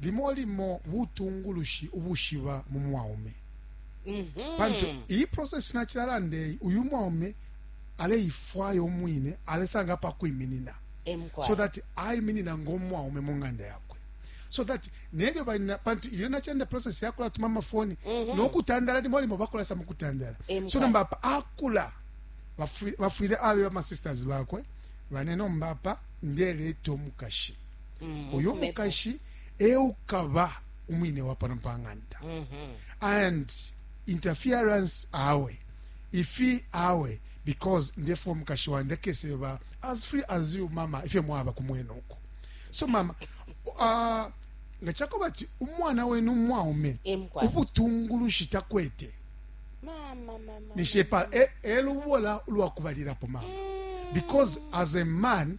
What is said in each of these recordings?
limo limo butungulushi ubushiba mu mwaume mm -hmm. pantu iyi process nacilalanda eyi uyu mwaume aleifwaya umwine alesanga apa kwiminina so that aiminina ng'omwaume mu ng'anda yakwe so that nelyo balina pantu iyo nachenda process yakula tuma mafoni mm -hmm. nokutandala limo limo bakula sa mukutandala so nomba apa akula bafwile abe bamasisters bakwe bane nomba apa ndeleta omukashi mm, uyo mukashi eukaba umwine wa pano pang'anda mm -hmm. and interference awe ifi awe because ndefo umukashi wandi akeseba as free as you mama ifyo mwaba kumwena uko so mama uh, nga chakoba ti umwana wenu umwaume ubutungulushi takwete nishepala e, elubola ulwakubalirapo mama mm. because as a man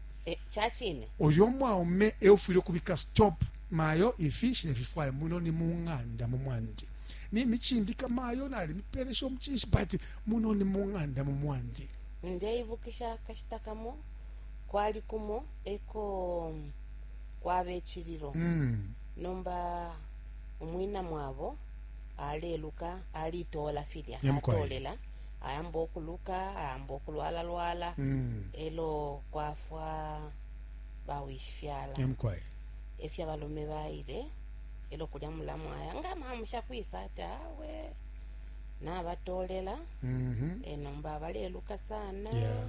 eh, ca cine oyo umwaume e ufwile ukubika stop mayo ifi nshilefifwaya muno ni mu ng'anda mu mwandi nimicindika mayo nalimipelesha omucinshi but muno ni mu ng'anda mu mwandi ndeibukisha akashita kamo kwali kumo eko mm, kwaba ecililo mm. nomba umwina mwabo aleluka alitola filya Nyamkwaya. atolela ayamba okuluka ayamba okulwala lwala mm. elo kwafwa bawishifyala emkwaye efya balume baile elo kulya mulamu aya nga mamusha kwisa ati awe nabatolela mm -hmm. e nomba baleluka sana yeah.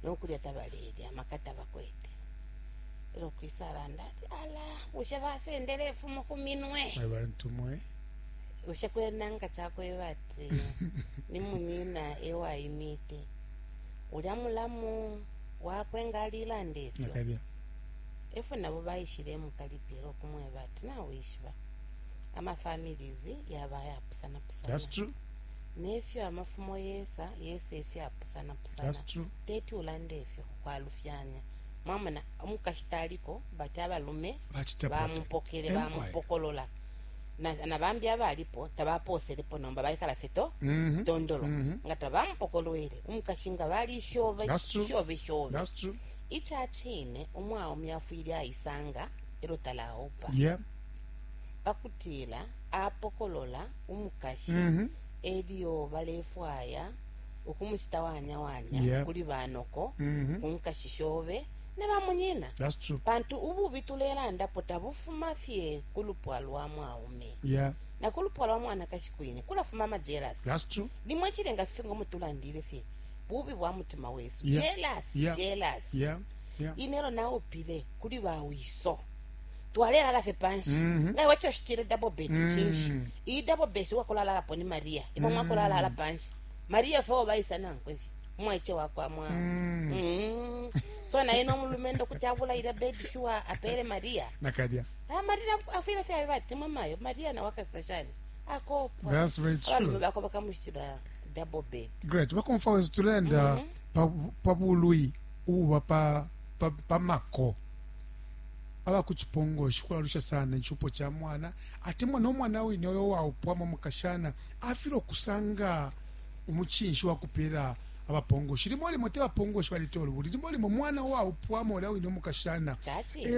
nokulya tabalelya amaka tabakwete elo kwisa alanda ati ala bushe basendele efumo kuminwe abantu mwe bushe kwena nga chakweba ati ni munyina ewaimite ulya mulamu wakwe nga alilanda efyo nakalya efwe nabo baishile emukalipila okumweba ati nawishiba amafamilies yaba yapusanapusana that's true nefyo amafumo yesa yesa efyapusanapusana that's true teti ulande efyo kwalufyanya mwamona umukashi taliko bati abalume Bachita protect. bamupokele Enquiry. bamupokolola na, na bambi abalipo tabapooselepo nomba baikala fye to Mhm. tondolo Mhm. nga tabamupokolwele umukashi nga balishove That's true. shove shove That's true. ica cine umwaume afwile aisanga elo talaupa Yeah. pakutila apokolola umukashi Mhm. elyo balefwaya ukumucita wanyawanya Yeah. kuli banoko Mhm. ku nkashi shove na bamunyina, pantu ububi tulelandapo tabufuma fye ku lupwa lwa mwaume yeah. na ku lupwa lwa mwanakashi kwine kulafuma amajelasi. Limo icilenga fife ngo mutulandile fye bubi bwa mutima wesu yeah. jelasi yeah. jelasi yeah. yeah. inelo naupile kuli bawiso twalelala fye panshi mm -hmm. naiwe choshitile double bed mm -hmm. chinshi iyi double bed wakulalalapo ni maria imwe mm -hmm. mwakulalala panshi maria fe obaisa nankwe fye mwaice wakwa mwa mm. mm. so naye nomulumendo kuti abulaile bedi shuwa apele maria nakalya ah, maria afwile fyabe batimwe mayo maria nawe akasita shani akopwa abalume bakwe bakamushitila double bed great bakomfa wezu tulenda mm -hmm. pa bulwi ububa pa, pa, pa mako aba ku cipongoshi kulalusha sana icupo ca mwana atemwa no mwana wine oyo waupwamo mukashana afile okusanga umucinshi wa kupeela abapongoshi. Limo limo te bapongoshi baletola ubulili, limo limo mwana uwaupwa, mola wine umukashana e